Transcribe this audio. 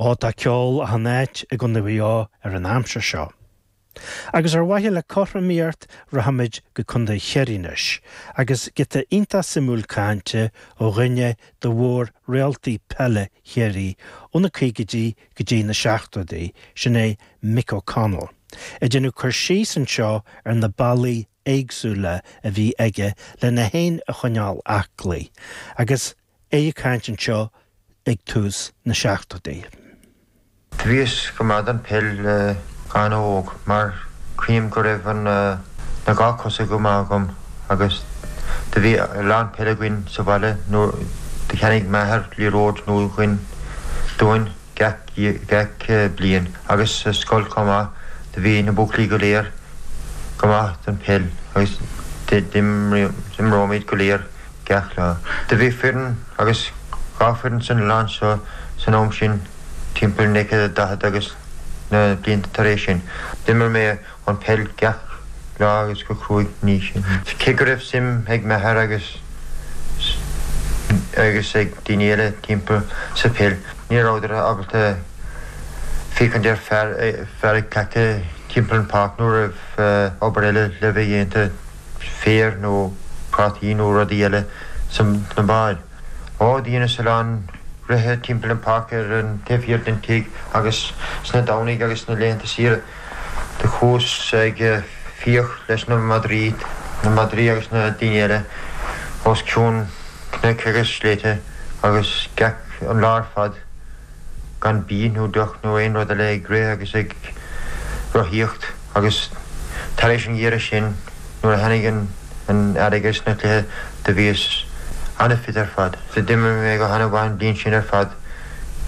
Ó tá ceol achan áit i gContae Mhaigh Eo an aimsir seo. Agus ar mhaithe le cothromaíocht rachaimid go Contae Chiarraí anois agus giota iontach suimiúil cainte ó dhuine de mhór-réaltaí peile Chiarraí ó na caogaidí go dtí na seachtóidí, sin é Mick O'Connell, ag déanamh cur síos anseo ar na bealaí éagsúla a bhí aige le é fhéin a choinneáil aclaí agus é ag caint anseo ag tús na seachtóidí. Bhíos go maith don peil le go han-óg mar chím go raibh an dá chos go maith agam agus do bhí a lán peil againn sa bhaile nuair do cheannaigh m'athair liathróid nua dúinn gach bliain agus sa scoil chomh maith do bhí na buachaillí go léir go maith don peil agus d'imreoimid go léir gach lá. Do bhí foireann agus dhá foireann san oileán so san am sin, timpeall 1940 agus na blianta tar éis sin. D'imir mé an pheil gach lá agus go cruaidh mar sin. Cé go raibh suim ag m'athair agus agus ag daoine eile timpeall sa peil, ní rabhadar ábalta féachaint ar fear ag cleachtadh timpeall an pháirc nuair a raibh obair eile le bheith déanta. féar nó prátaí nó rudaí eile sna báid. Ó, dheineas a lán rith timpeall an pháirc ar an taobh thiar den tigh agus sna Domhnaigh agus sna laethanta saoire do chuas ag fiach leis na madraí, na madraí agus na daoine eile os cionn cnoic agus sléibhte agus gach an lá ar fad. gan bia nó deoch ná aon rud eile ag rith agus ag rothaíocht agus tar éis an gheimhridh sin nuair a tháinig an t-earrach is na cluichí do bhíos an-fit ar fad. D'imir mé go han-mhaith an bhliain sin ar fad.